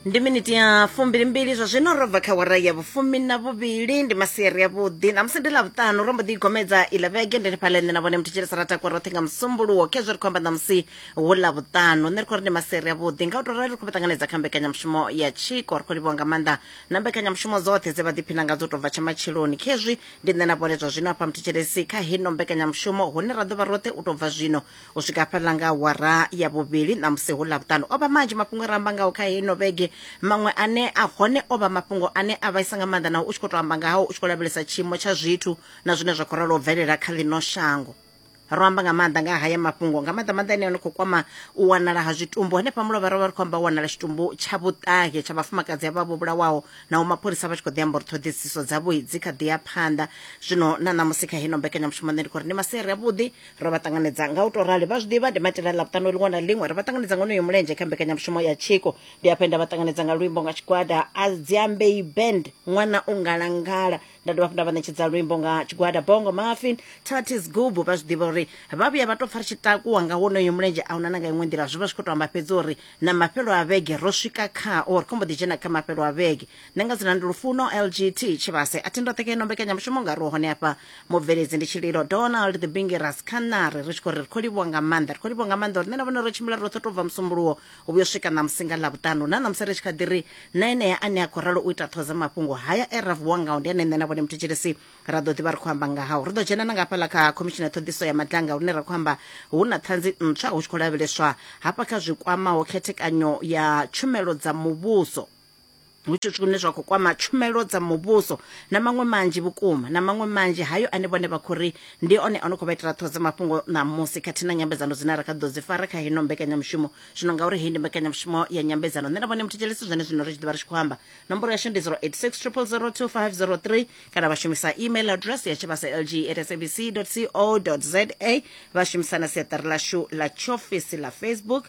ndi miniti ya fumbilimbili zwa zwino ro bva kha wara ya vhufumi na vhuvhili ndi masiari ya vhuḓi namusi ndi ḽavhuṱanu ro mbo ḓi igomedza iḽa vhege ndi fhaḽa nṋe na vhone muthu tshilisa ra takwa roṱhe nga musumbuluwo khezwo ri khou amba namusi hu ḽavhuṱanu nṋe ri khou ri ndi masiari ya vhuḓi nga u tou rali ri khou vha ṱanganedza kha mbekanyamushumo ya tshiko ri khou livhiwa nga maanḓa na mbekanyamushumo dzoṱhe dze vha ḓiphina ngadzo tou bva tsha matshiloni khezwi ndi nṋe na vhone zwa zwino hafha muthu tshilisi kha hino mbekanyamushumo hune ra ḓo vha roṱhe u tou bva zwino u swika hafhaḽa nga awara ya vhuvhili ṋamusi hu ḽa vhuṱanu o vha manzhi mafhungo e ra amba ngaho kha heino vhege maṅwe ane a hone o vha mafhungo ane a vhaisa nga maanḓa naho u tshi khou tou amba ngahao u tshi khou lavhelesa tshiimo tsha zwithu na zwine zwa khou ralo u bvelela kha ḽino shango ro amba nga maanḓa nga haya mafhungo nga maanḓa maanḓa ane a khou kwama u wanala ha zwitumbu henefha mulovha ro vha ri khou amba u wanala tshitumbu tsha vhuṱahe tsha vhafumakadzi avha vho vhulawaho naho mapholisa vha tshi khou ḓi amba uri ṱhoḓisiso dzavho dzi kha ḓi ya phanḓa zwino na ṋamusi kha hino mbekanyamushumo nṋe ndi khou ri ndi masiari avhuḓi ro vha ṱanganedza nga u to rali vha zwiḓivha ndi maitele ḽa vhuṱanu ḽiṅwe na ḽiṅwe ri vha ṱanganedza nga onoyo mulenzhe kha mbekanyamushumo ya tshiko ndi hafhe nda vha ṱanganedza nga luimbo nga tshigwada a dziambei band ṅwana u ngalangala nda dovha hafhu nda vha ṋetshedza luimbo nga tshigwada bongo mafin tatis gubu vha zwiḓivha uri vha vhuya vha tou pfa ri tshi takuwa nga wonoyo mulenzhe a huna na nga iṅwe nḓila zwi vha zwi khou tou amba fhedzi uri na mafhelo a vhege ro swika khao ri khombo ḓi dzhena kha mafhelo a vhege nṋe nga dzina ndi lufuno lgt tshivhase a thi ndoṱhe kha ino mbekanyamushumo nga ro hone afha mubveledzi ndi tshililo donald the bingi rascanary ri tshi khou ri ri khou livhuwa nga maanḓa ri khou livhuwa nga maanḓa uri nṋe na vhone ro tshimbila roṱhe to bva musumbuluwo u vhuyo swika na musinga ḽa vhuṱanu na ṋamusi ri tshi kha ḓi ri na enea ane a khou ralo u ita ṱhoza mafhungo haya e ra vuwa ngao ndi ane nṋe na vhone muthetshelesi ra ḓo ḓivha ri khou amba nga hao ri ḓo dzhena na nga hafhaḽa kha khomishini ya ṱhoḓiso ya madlanga lune ra khou amba hu na ṱhanzi ntswa hu tshi khou lavheleswa hafha kha zwi kwamaho khethekanyo ya tshumelo dza muvhuso hu tshi zwithu zwine zwa khou kwama tshumelo dza muvhuso na maṅwe manzhi vhukuma na maṅwe manzhi hayo ane vhone vha khou ri ndi one a no khou vha itela ṱhoho dza mafhungo ṋamusi khathihi na nyambedzano dzine ra kha ḓo dzi fara kha hino mbekanyamushumo zwino ngauri heyi ndi mbekanyamushumo ya nyambedzano nṋe na vhone muthetshelesi zwene zwino ri tshi ḓivha ri tshi khou amba nomboro yashu ndi 086 002503 kana vha shumisa email address ya tshivhasa lg at sabc co za vha shumisa na siaṱari lashu ḽa tshiofisi ḽa facebook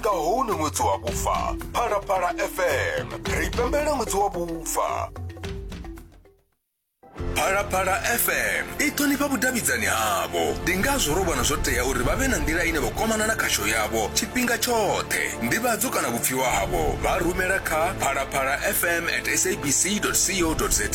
nga hone ṅwedzi wa vhufa phalaphala fm ri pembela ṅwedzi wa vhufa phalaphala fm i ṱhonifha vhudavhidzani havho ndi ngazwo ro vhona zwo tea uri vha vhe na nḓila ine vha kwamana na khasho yavho tshifhinga tshoṱhe ndivhadzo kana vhupfiwa havho vha rumela kha phalaphala fm at sabc co za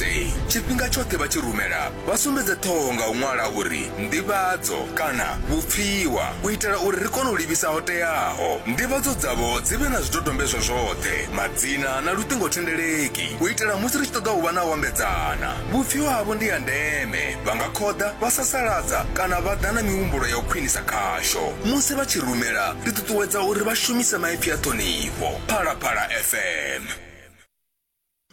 tshifhinga tshoṱhe vha tshi rumela Vha sumbedze ṱhoho nga u ṅwala uri Nḓivhadzo kana Vhupfiwa u itela uri ri kone u livhisa ho teaho. Nḓivhadzo dzavho dzi vhe na zwidodombedzwa zwoṱhe, madzina na luṱingothendeleki u itela musi ri tshi ṱoḓa u vha na u ambedzana. Vhupfiwa havho ndi ha ndeme, vha nga khoḓa, vha sasaladza kana vha ḓa na mihumbulo ya u khwinisa khasho. Musi vha tshi rumela, ri ṱuṱuwedza uri vha shumise maipfi a ṱhonifho. Phalaphala FM.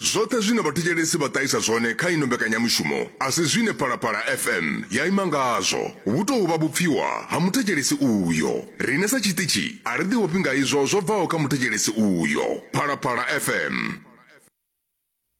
Zwoṱhe zwine vhathetshelesi vha ṱahisa zwone kha ino mbekanyamushumo a si zwine Phalaphala FM ya ima ngazwo. Vhu tou vha vhupfiwa ha muthetshelesi uyo. Riṋe sa tshiṱitshi a ri ḓiofhi nga izwo zwo bvaho kha muthetshelesi uyo. Phalaphala FM.